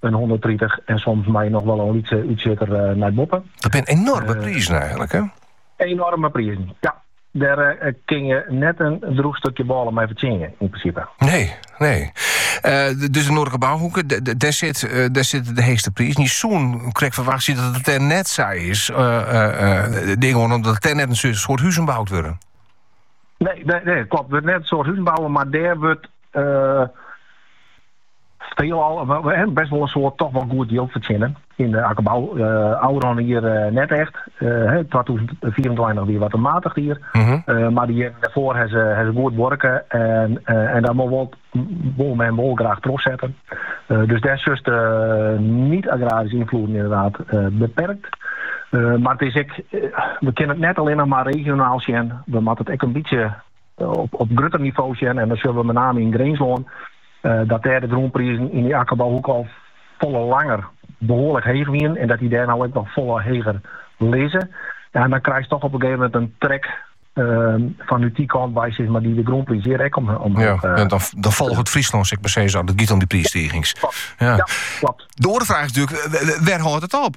in hûnderttritich en soms mei noch wol in lytse útsjitter nei boppe. Dat binne enorme prizen eigenlik, hè? Enorme prizen, ja. Dêr kin je net in droech stukje bôle mei fertsjinje, yn prinsipe. Nee, nee. Uh, dus de noardlike bouhoeke, dêr sit, uh, dêr sitte de heechste prizen. Je soene krekt ferwachtsje dat it dêr net sa is. Uh, uh, tink omdat dêr net in soad, soad huzen boud wurde. Nee, nee, nee klopt. Dêr net in soad huzen boud, mar dêr wurdt Veelal, best wol in soad, toch wol goed jild fertsjinne. Yn de akkerbou ôfrûne jier net echt. Twatûzen fiifentweintich wie wat in matich jier. Mar de jierren dêrfoar ha se goed buorke en dat wol men wol graach trochsette. Dus dêr sjochst de niet-agraryske ynfloeden ynderdaad beperkt. Mar it is ek, we kinne it net allinnich mar regionaal sjen. We moatte it ek in bytsje op grutter nivo sjen en dan sjogge we met name yn Grinslân, dat dêr de grûnprizen yn dy akkerbouhoeke al folle langer behoarlik heech wienen en dat dy dêr no ek noch folle heger lizze. Ja, en dan krijst toch op in gegeven moment in trek fan út dy kant wei sis mar dy de grûnpriis hjir ek omheech. Ja, en dan folget Fryslân sis mar as it giet om dy priisstigings. Ja, klopt. De oare fraach is natuurlijk, wêr hâldt it op?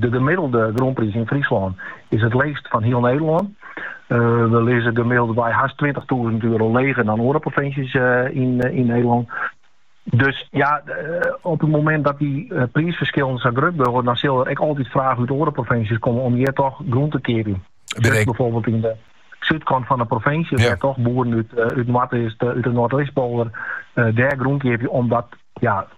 De gemiddelde grûnpriis yn Fryslân is it leechst fan hiel Nederlân. We lizze gemiddeld-wei hast tweintichtûzen euro leger dan oare provinsjes yn Nederlân. Dus ja, op it momint dat dy priisferskillen sa grut wurde, dan sil der ek altyd fraach út oare provinsjes komme om hjir toch grûn te keapjen. Sjochst byfoarbyld yn de súdkant fan de provinsje, wêr't toch boeren út Noardeast, út de Noardeastpolder dêr grûn keapje, omdat ja,